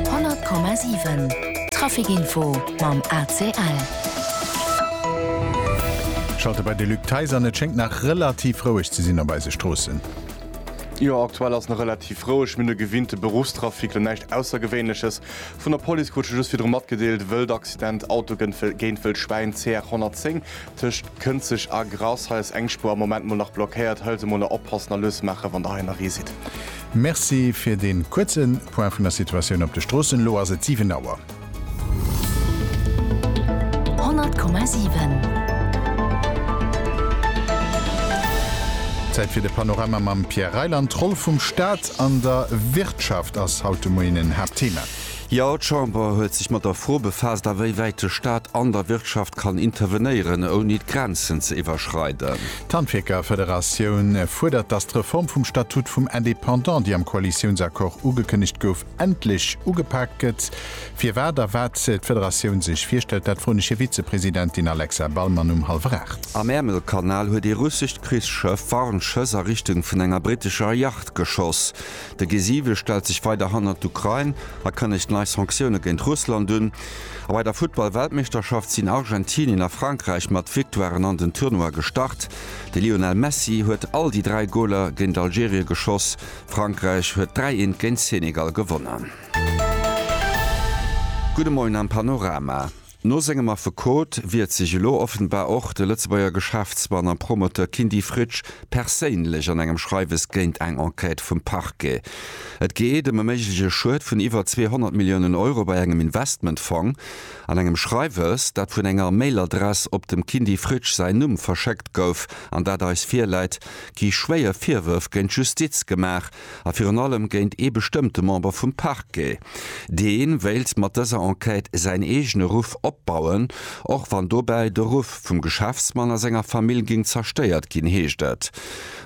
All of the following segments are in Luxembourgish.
100,7 Traficinfo mam ACL. Schalte bei de Luc Theis an. Et schéngt nach relativ roueg ze sinn op eise Stroossen. Jo, aktuell ass nach relativ roueg. Mir hunn e gewinnte Beruffstrafic, lo näischt Aussergewéinleches. Vun der Police krut ech just virdru matgedeelt, Wëld Accident, Auto gënnt géint Wëld Schwäin, CR 110 tëscht Kënzeg a Grass. Hei ass eng Spuer am Moment mol nach blockéiert. Hëlsemoler oppassen a lues maache wann der hei nach eesitt. Merci fir deen kuerzen Point vun der Situatioun op de Stroossen. Elo ass et 7 Auer. 100,7. Zäit fir de Panorama mam Pierre Reyland. D'Roll vum Staat an der Wirtschaft ass haut de Moien en Haaptthema. Jo, d'Chamber huet sech mat der Fro befaasst, awéiwäit de Staat an der Wirtschaft kann intervenéieren, ouni d'Grenzen ze iwwerschreiden. D'Handwierkerfederatioun fuerdert, datt d'Reform vum Statut vum Indépendant, déi am Koalitiounsaccord ugekënnegt gouf, endlech ugepaakt gëtt. Firwat a wat d'Federatioun sech virstellt, dat froen ech hir Vizepresidentin Alexa Ballmann um hallwer aacht. Am Äermelkanal huet ee russescht Krichsschëff Warnschëss a Richtung vun enger brittescher Yacht geschoss. De G7 stellt sech weider hannert d'Ukrain a kënnegt nei Sanktioune géint Russland un. A bei der Futtball-Weltmeeschterschaft sinn Argentinien a Frankräich mat Victoiren an den Tournoi gestart. De Lionel Messi huet all déi dräi Goler géint Algerie geschoss. Frankräich huet 3 eent géint Senegal gewonnen. Gudde Moien am Panorama. No sengem Affekot wiert sech elo offenbar och de Lëtzebuerger Geschäftsmann a Promoteur Kindy Fritsch perséinlech an engem Schreiwes géint eng Enquête vum Parquet. Et geet ëm e méigleche Schued vun iwwer 200 Milliounen Euro bei engem Investmentfong. An engem Schreiwes, dat vun enger Mailadress op dem Kindy Fritsch säin Numm verschéckt gouf an dat eis virläit, gi schwéier Virwërf géint d'Justiz gemaach, a virun allem géint ee bestëmmte Member vum Parquet, dee wéilt mat dëser Enquête säin eegene Ruff opbauen, och wann dobäi de Ruff vum Geschäftsmann a senger Famill géing zerstéiert ginn, heescht et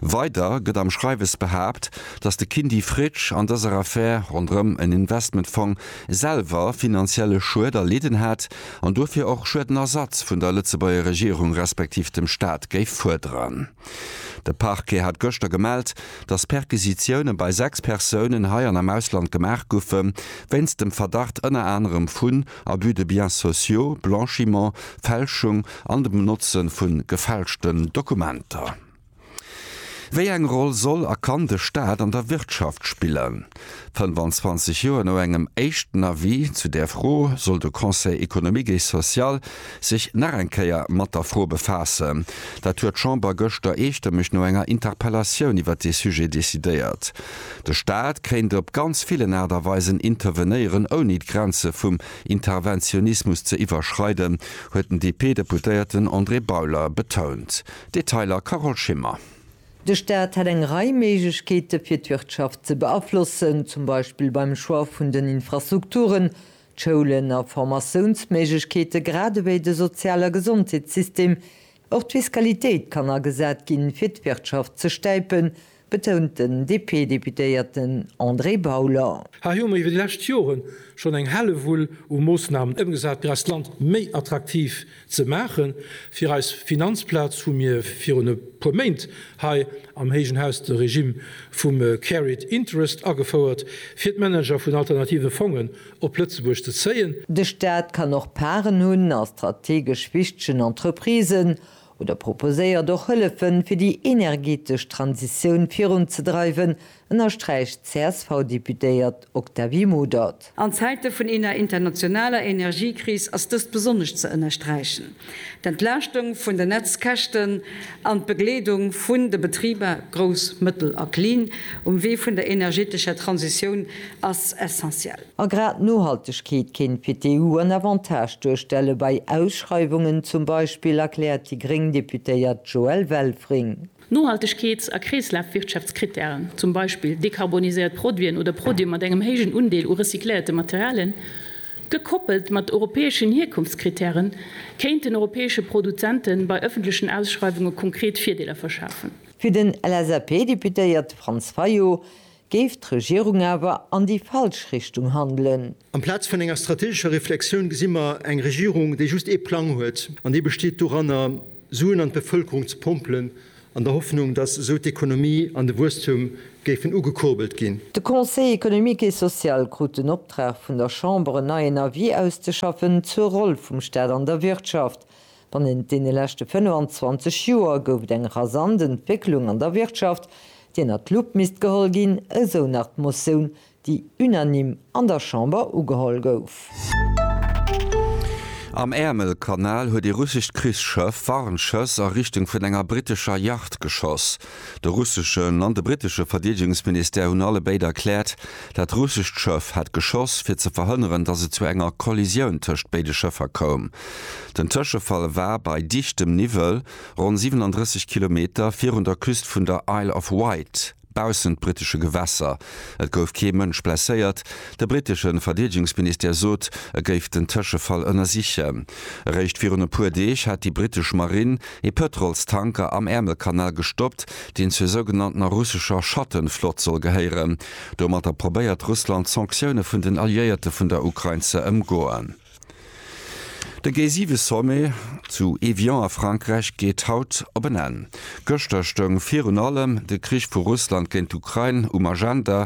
weider. Gëtt am Schreiwes behaapt, datt de Kindy Fritsch an dëser Affär ronderëm en Investmentfong selwer finanzielle Schued erlidden hätt an dofir och Schuedenersatz vun der Lëtzebuerger Regierung respektiv dem Staat géif fuerderen. De Parquet hat gëschter gemellt, datt Perquisitioune bei sechs Persounen hei an am Ausland gemaach goufe wéinst dem Verdacht ënner anerem vun Abus de biens sociaux, Blanchiment, Fälschung an dem Benotzen vu gefälschten Dokumenter. Wéi eng Roll soll a kann de Staat an der Wirtschaft spillen? 25 Joer no engem éischten Avis zu där Fro soll de Conseil économique et social sech nach eng Kéier mat der Fro befaassen. Dat huet d'Chamber gëschter eestëmmeg no enger Interpellatioun iwwert dee Sujet decidéiert. De Staat kéint op ganz villen Aart a Weisen intervenéieren, ouni d'Grenze vum Interventionismus ze iwwerschreiden, huet den DP-Deputéierten André Bauler betount. Detailer, Carole Schimmer. De Staat hätt eng Rei Méiglechkeete fir d'Wirtschaft ze beaflossen, zum Beispill beim Choix vun den Infrastrukturen, D'Schoulen a Formatiounsméiglechkeete grad ewéi de Sozial a Gesondheetssystem, och d'Fiskalitéit kann agesat ginn, fir d'Wirtschaft ze stäipen, betount den DP-Deputéierten André Bauler. Hei hu mer iwwer déi lescht Joren schonn eng Hellewull u Moossnamen ëmgesat, fir eist Land méi attraktiv Ze maachen. Fir eis Finanzplaz hu mir virun e puer Méint hei am héijen Haus de Regime vum Carried Interest agefouert, fir d'Manager vun alternative Fongen op Lëtzebuerg ze zéien. De Staat kann och Parten hunn a strategesch wichtegen Entreprisen oder proposéiert och Hëllefen, fir déi energetesch Transitioun virunzedreiwen, ënnersträicht d'CSV-Deputéiert Octavie Modert. An Zäite vun eener internationaler Energiekris ass dëst besonnesch ze ënnersträichen. D'Entlaaschtung vun den Netzkäschten an d'Begleedung vun de Betriber, grouss, mëttel a klin, um Wee vun der energetescher Transitioun ass essentiell. A grad d'Nohaltegkeet kéint fir d'EU en Avantage duerstelle bei Ausschreiwungen zum Beispill, erkläert déi gréng Deputéiert Joëlle Welfring. Nohaltegkeets a Kreeslafwirtschaftskrittären, zum Beispill dekarboniséiert Produiten oder Produite mat engem héijen Undeel u recycléierte Materialien, gekoppelt mat europäeschen Hierkunftskrittären, kéinten europäesche Produzente bei ëffentlechen Ausschreiwunge konkret Virdeeler verschafen. Fir den LSAP-Deputéierte Franz Fayot Géif d'Regierung awer an déi falsch Richtung handelen? Amplaz vun enger strategescher Reflexioun gesi mer eng Regierung, déi just ee Plang huet, an dee besteet doranner, Suen an d'Bevëlkerung ze pompelen, an der Hoffnung, datt esou d'Ekonomie an de Wuesstum géifen ugekurbelt ginn. De Conseil économique et social krut den Optrag vun der Chamber, en neien Avis auszeschaffen zur Roll vum Staat an der Wirtschaft. Bannent deene leschte 25 Joer gouf et eng rasant Entwécklung an der Wirtschaft, déi ënnert d'Lupp misst geholl ginn, esou nach d'Motioun, déi unanime an der Chamber ugeholl gouf. Am Äermelkanal huet ee russescht Krichsschëff Warnschëss a Richtung vun enger brittescher Yacht geschoss. De russeschen an de brittesche Verdeedegungsministère hunn allebéid erkläert, dat russescht Schëff hätt geschoss, fir ze verhënneren, datt et zu enger Kollisioun tëscht béide Schëffer koum. Den Tëschefall war bei dichtem Niwwel, ronn 37 Kilometer virun der Küst vun der Isle of Wight, baussent brittesche Gewässer. Et gouf kee Mënsch blesséiert. De brittesche Verdeedegungsministère sot, e géif den Tëschefall ënnersichen. Eréischt virun e puer Deeg hat déi brittesch Marine ee Pëtrolstanker am Ärmelkanal gestoppt, deen zur sougenanntener russescher Schattenflott soll gehéieren. Domatter probéiert Russland d'Sanktioune vun den Alliéierte vun der Ukrain ze ëmgoen. De G7-Sommet zu Evian a Frankräich geet haut op en Enn. Gëschter stoung virun allem de Krich vu Russland géint d'Ukrain um Agenda,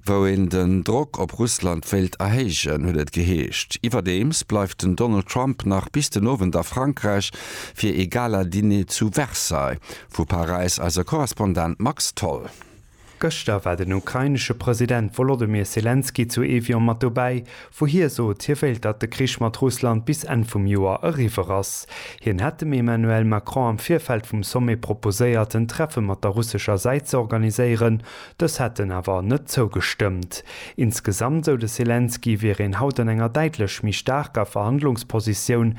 wou een den Drock op Russland wéilt erhéijen, huet et geheescht. Iwwerdeems bleift den Donald Trump nach bis den Owend a Frankräich, Fir ee Gala-Diner zu Versailles. Vu Paräis eise Korrespondent Max Tholl. Gëschter war den ukrainesche President Wolodymyr Selenskyj zu Evian mat dobäi, wou hie sot, hie wéilt, datt de Krich mat Russland bis Enn vum Joer eriwwer ass. Hien hätt dem Emmanuel Macron am Virfeld vum Sommet proposéiert, en Treffe mat der russescher Säit ze organiséieren, dës hätten awer net zougestëmmt. Insgesamt, sou de Selenskyj, wier een haut an enger däitlech méi staarker Verhandlungspositioun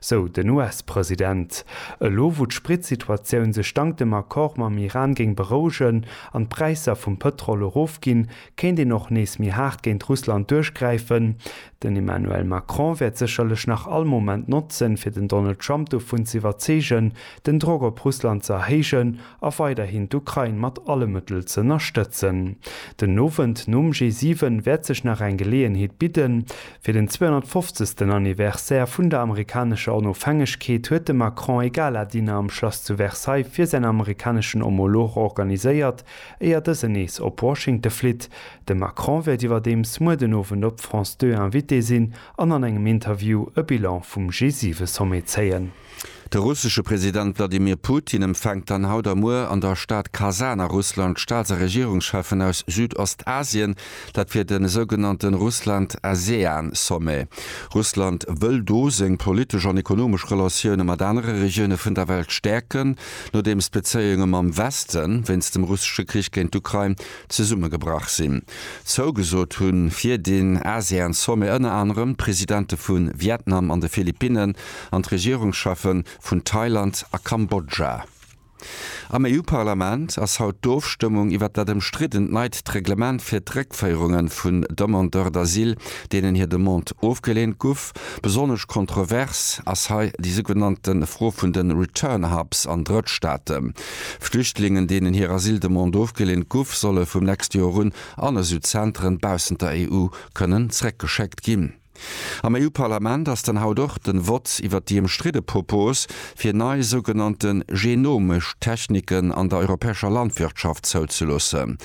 sou den US-President. Elo wou d'Spritsituatioun sech dank dem Accord mam Iran géing berouegen an d'Präisser vum Pëtrol erofginn, kéint een och nees méi haart géint Russland duerchgräifen. Den Emmanuel Macron wäert sécherlech nach all Moment notzen, fir den Donald Trump dovun z'iwwerzeegen, den Drock op Russland ze erhéijen a weiderhin d'Ukrain mat alle Mëttel z'ënnerstëtzen. Den Owend nom G7 wäert sech nach eng Geleeënheet bidden. Fir den 250. Anniversaire vun der amerikanescher Onofhängegkeet huet de Macron ee Gala-Diner am Schlass zu Versailles fir säin amerikaneschen Homolog organiséiert, éier dësen nees op Washington flitt. De Macron wäert iwwerdeems muer den Owend op France 2 Invité sinn an an engem Interview e Bilan vum G7-Sommet zéien. De russesche President Wladimir Putin empfänkt dann haut a muer an der Stad Kasan a Russland d'Staats a Regierungscheffen aus Südostasien, dat fir de sougenannte Russland-ASEAN-Sommet. Russland wëll do seng politesch an ekonomesch Relatioune mat anere Regioune vun der Welt stäerken, nodeems d'Bezéiunge mam Weste wéinst dem russesche Krich géint d'Ukrain zesummegebrach sinn. Zougesot hu fir den ASEAN-Sommet ënner anerem d'Presidente vu Vietnam an de Philippinnen. an d'Regierungscheffe vun Thailand a Kambodscha. Am EU-Parlament ass haut d'Ofstëmmung iwwert dat ëmstriddent neit d'Reglement fir d'Réckféierunge vun Demandeurs d'asile, deenen hir Demande ofgeleent guff. Besonnesch kontrovers ass hei déi sougenannte Fro vun de Return Hubs an Drëttstaate. Flüchtlingen, deenen hir Asyldemande ofgeleent guff, solle vum nächste Joer un an esou Zenteren baussent der EU kënnen zréckgeschéckt ginn. Am EU-Parlament ass dann haut och den Vott iwwert déi ëmstridde Propos, fir nei sougenannte genomesch Techniken an der europäescher Landwirtschaft zouzeloossen.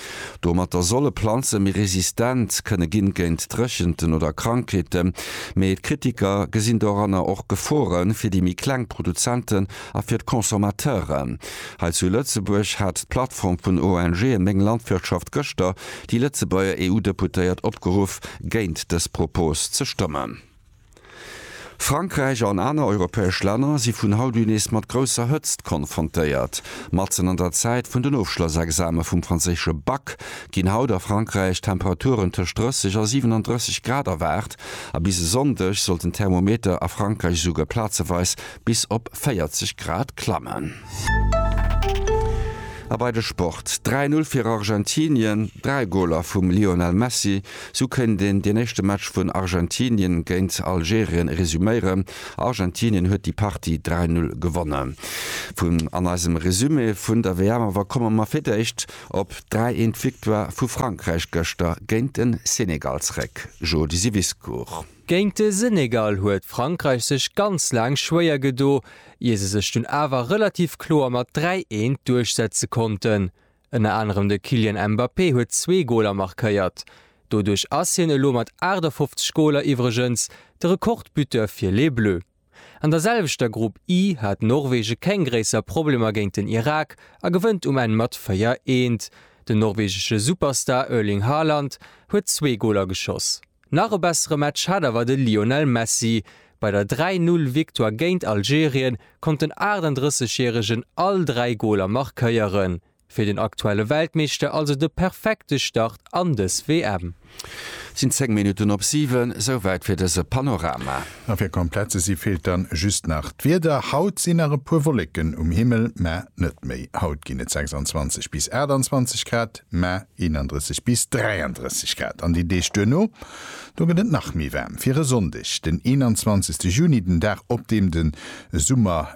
Domatter solle Planze méi resistent kënne ginn géint Dréchenten oder Krankheeten. Mee d'Kritiker gesinn doranner och Gefore fir déi méi kleng Produzenten a fir d'Consommateuren. Hei zu Lëtzebuerg hat d'Plattform vun ONGe Meng Landwirtschaft gëschter Déi Lëtzebuerger EU-Deputéiert opgeruff, géint dës Propos ze stëmmen. Frankräich an aner europäesch Länner si vun haut un nees mat grousser Hëtzt konfrontéiert. Matzen an der Zäit vun den Ofschlossexame vum franséische Bac ginn haut a Frankräich Temperaturen tëscht 30 a 37 Grad erwaart a bis e Sonndeg sollten d'Thermometer a Frankräich esouguer plazeweis bis op 40 Grad klammen. A bei de Sport, 3 Null fir Argentinien, 3 Goler vum Lionel Messi. Sou kéint een deen éischte Match vun Argentinien géint Algerien resuméieren. Argentinien huet déi Partie 3 Null gewonnen. Vun an eisem Resumé vun der WM awer komme mer fir d'éischt op d'Dräi Eent Victoire vu Frankräich gëschter géint den Senegal zréck. Jody Siwiscourt. Géint de Senegal huet Frankräich sech ganz laang schwéier gedo, ier se sech dunn awer relativ kloer mat 3 Eent duerchsetze konnten. Ënner anerem de Kylian Mbappé huet zwee Goler markéiert. Doduerch ass hien elo mat 58 Goler iwwregens de Rekordbuteur fir Les Bleus. An der selwechter Grupp I hat Norwege keng gréisser Problemer géint den Irak a gewënnt um Enn mat 4, 1. Den norwegesche Superstar Erling Haaland huet zwee Goler geschoss. Nach e bessere Match hat awer de Lionel Messi. Bei der 3, 0 Victoire géint Algerien konnt den 38 järegen all 3 Goler markéieren. Fir den aktuelle Weltmeeschter also de perfekte Start an dës WM. Sinn 10 Minutten op 7. Souwäit fir dëse Panorama. A fir komplett ze si feelt dann just nach d'Wieder. Haut sinn nach e puer Wolleken um Himmel, mä net méi. Haut ginn et 26 bis 28 Grad, mä 31 bis 33 Grad an den Deeg duerno. Do gëtt et nach méi waarm. Fir e Sonndeg, den 21 Juni, den Dag op deem de Summer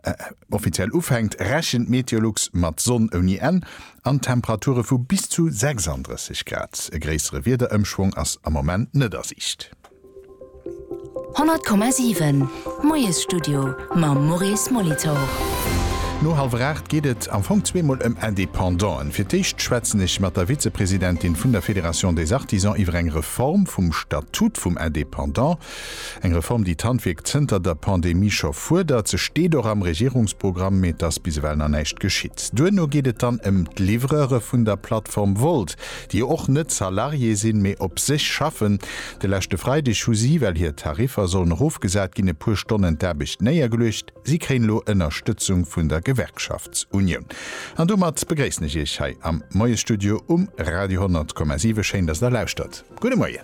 Offiziell ufänkt, rechent Meteolux mat Sonn ouni Enn an Temperature vu bis zu 36 Grad. E gréissere Wiederëmschwong ass am Moment net a Siicht. 100,7 Moiesstudio mam Maurice Molitor. No hallwer 8 geet et am Fong zweemol ëm Independanten. Fir d'éischt schwätzen ech mat der Vizepresidentin vun der Fédération des Artisans iwwer eng Reform vum Statut vum Independant. Eng Reform, déi d'Handwierk zënter der Pandemie scho fuerdert. Se steet och am Regierungsprogramm, mee et ass bis ewell nach näischt geschitt. Duerno geet et dann ëm d'Livreure vun der Plattform Wolt, déi jo och net Salarié sinn, mee op sech schaffen. De leschte Freideg hu si, well hir Tariffer sollen erofgesat ginn, e puer Stonnen d'Aarbecht néiergeluecht. Si kréien elo Ënnerstëtzung vun der Gewerkschaftsunioun. An domat begréissen ech Iech hei am Moiesstudio um Radio 10,7. Schéin, dass Der lauschtert. Gudde Moien.